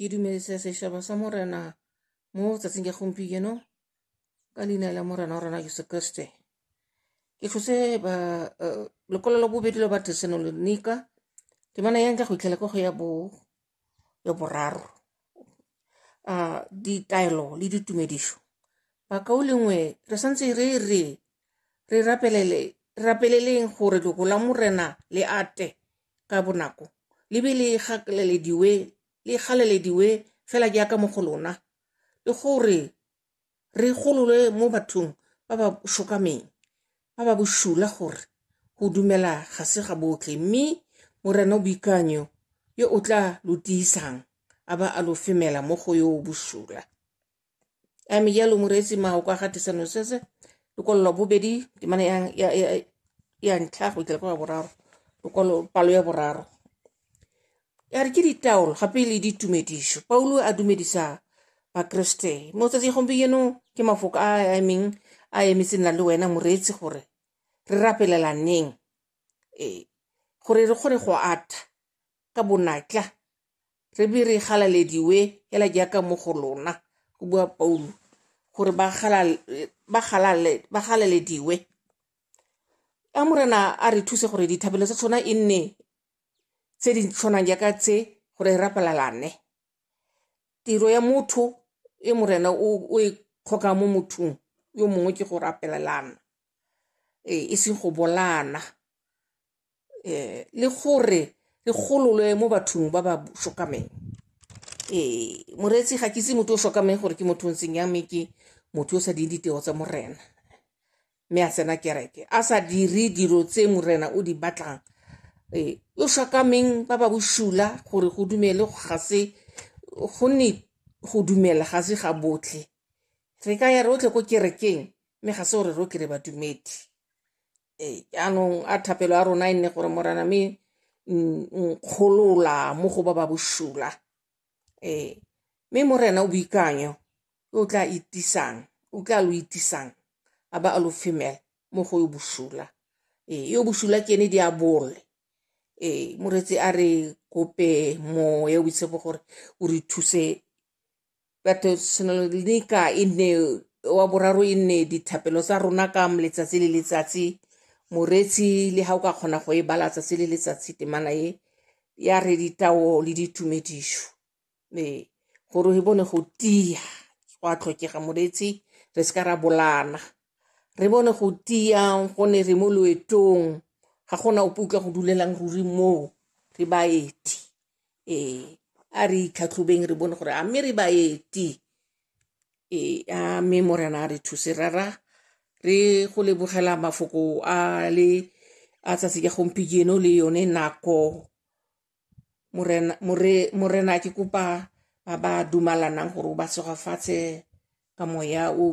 ke dumedisa setšhaba sa morena mo tsatsing ya gompieno ka leina la morena wa rona jesu kriste ke tlhose ba eh, lekwalo la bobedi la batesanonika temana ya nka go itlhela ka go ya bo ya boraro a ah, ditaelo le ditumedišo bakao lengwe re santse re re re rapelele rapeleleng gore lego la morena le ate ka bonako le be le gakalelediwe le galalediwe fela jaaka mo go lona le gore re gololwe mo bathong ba ba shokameng ba ba boshula gore go dumela ga se ga botlhe mme morena o boikanyo yo o tla lo tiisang a ba a lo femela mo go yo o boshula a me jalo moreetsi mao kwa ga tisano sese lokololo bobedi temana ya, ya, ya, ya ntlha go itla kwa boraro lokolo palo ya boraro ya re ke ditaolo gape le ditumediso paulo a dumedisa bakreste mo tsatsi gompieno ke mafoko a a emeng a emetse nna le wena moreetsi gore re rapelelaneng ee gore re kgone go atha ka bonatla re be re galalediwe hela jaaka mo go lona go bua paulo gore ba galalediwe a morena a re thuse gore dithabelo tsa tshwana e nne tse di tshwanang jaaka tse gore re rapalalane tiro ya motho e morena o e kgoka mo mothong yo mongwe ke go rapelelana ee e seng go bolana um le gore re gololwe mo bathong ba ba shokameng um eh, moreetsi ga ke se motho o shokameng gore ke motho o ntseng ya mme ke motho o sa ding ditego tsa morena mme a tsena kereke a sa dire dilo tse morena o di batlang um o shokameng ba ba bosula gore go dumele ga se go ne go dumela ga se ga botlhe re ka ya rotlhe ko kerekeng mme ga se gore rotlhe re badumedi e, jaanong a thapelo ya rona e nne gore morana me nkgolola mo go ba ba bosula ee mme morena o boikanyo o tla itisang o tla lo itisang a ba a lo femela mo go yo bosula ee yo bosula ke ene diabole ee moretsi a re kope moya o boitshepo gore o re thuse batho tshwanelo di ka e nne wa boraro e nne dithapelo tsa rona ka letsatsi le letsatsi moretsi le ga o ka kgona go e bala tsatsi le letsatsi temana e ya re ditao le ditumedišo ee gore e bone go tia go a tlhokega moretsi re se ka ra bolana re bone go tia gone re mo loetong ga gona ope utlwa go dulelang ruri moo re baeti ee a re itlhatlhobeng re bone gore a mme re baeti ee a mme morena a re thuse rara re go lebogela mafoko a le a tsatsi ka gompieno le yone nako morena ke kopa ba ba dumalanang gore o ba segofatshe ka moya o